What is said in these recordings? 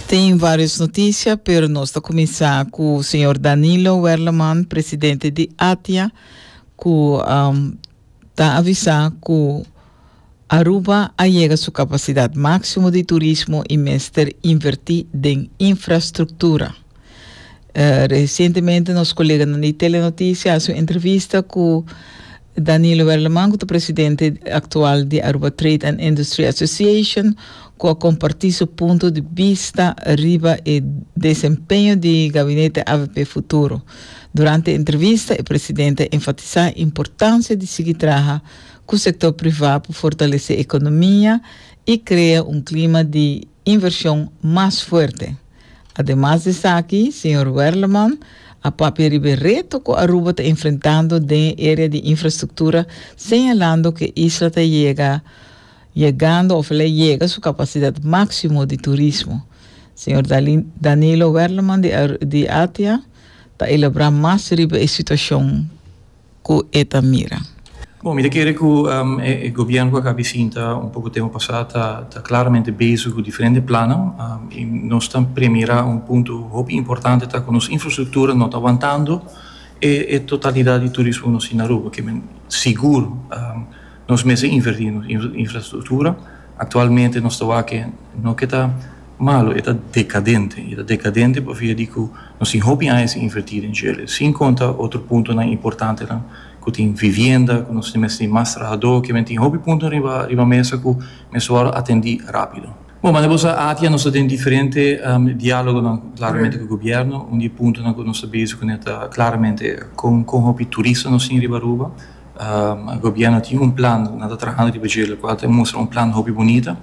Tin varios noticia pero nos ta cuminsa cu señor Danilo Werleman presidente di ATIA cu um, ta avisa cu Aruba a yega su capacidad maximo di turismo y mester inverti den infrastructura. Resientemente nos koleganan di Telenoticia a hasi un entrevista ku Danilo Werleman ku ta presidente aktual di Aruba Trade and Industry Association ku a kompartí su punto di bista riba e desempeño di gabinete avp futuro. Durante e entrevista e presidente a enfatisá e importansia di sigui traha ku sektor privá pa fortalesé ekonomia i krea un klima di invershon mas fuerte. Ademas di esaki, señor Werleman a papia riba e reto cu Aruba ta enfrentando den e area di infrastructura, señalando cu e isla ta yega yegando of el a yega su capacidad maximo di turismo. Señor Dalin Danilo Werleman di Aru di ATIA ta elabra mas riba e situacion. ku e ta mira. Bon, mi ta kere ku e gobièrnu ku a kabi sinta un poko tempu pasá ta klaramente bezig ku diferente plannan i nos ta premirá un punto hopi importante ta ku nos infrastruktura no ta wantando e totalidat di turismo ku nos tin na Aruba. Ke men sigur nos mester invertí nos infrastruktura. Aktualmente nos ta wak ke no ke ta. Malo, e ta dekadente. E ta dekadente pa via di ku nos tin hopi aña sin invertí den Chele, sin konta otro puntonan importantenan ku tin vivienda, ku nos tin mester tin mas trahadó. Kimen tin hopi punto riba riba mesa ku mester wòrdu atendí rápido. Bon, manera bo sa, ATIA nos ta den diferente diálogonan klaramente ku gobièrnu. Un di e puntonan ku nos ta bezig ku nan ta klaramente kon kon hopi turista nos tin riba Aruba. Gobièrnu tin un plan, nan ta trahando riba Chele, kual ta mustra un plan hopi bunita.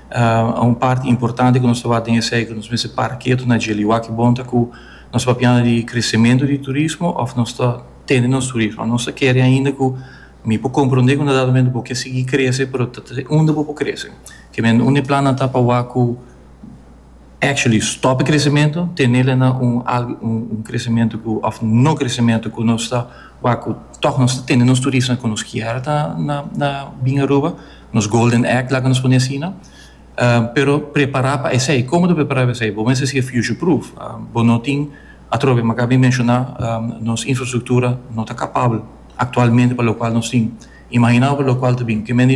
A un parti importante ku nos ta wak den esei ku nos mester para ketu na dje liwá ki bon ta ku nos papiando di kresementu di turismo òf nos ta tende nos turismo. Nos ta kere ainda ku mi por komprondé ku un dado momento bo ke sigui krese pero ta te unda bo por krese. Ke men un di e plannan ta pa wak ku actually stòp e kresementu, tene la na un algu un kresementu ku òf no kresementu ku nos ta wak ku tòg nos ta tende nos turista ku nos kier ta na na bin Aruba. nos golden egg laga nos pone asina pero prepara pa esey como ta prepara pa esey bo mester sigue future proof bo no tin atrobe maka mi menciona nos infrastructura no ta capabel actualmente pa locual nos tin imagina awe pa locual ta bini kimendi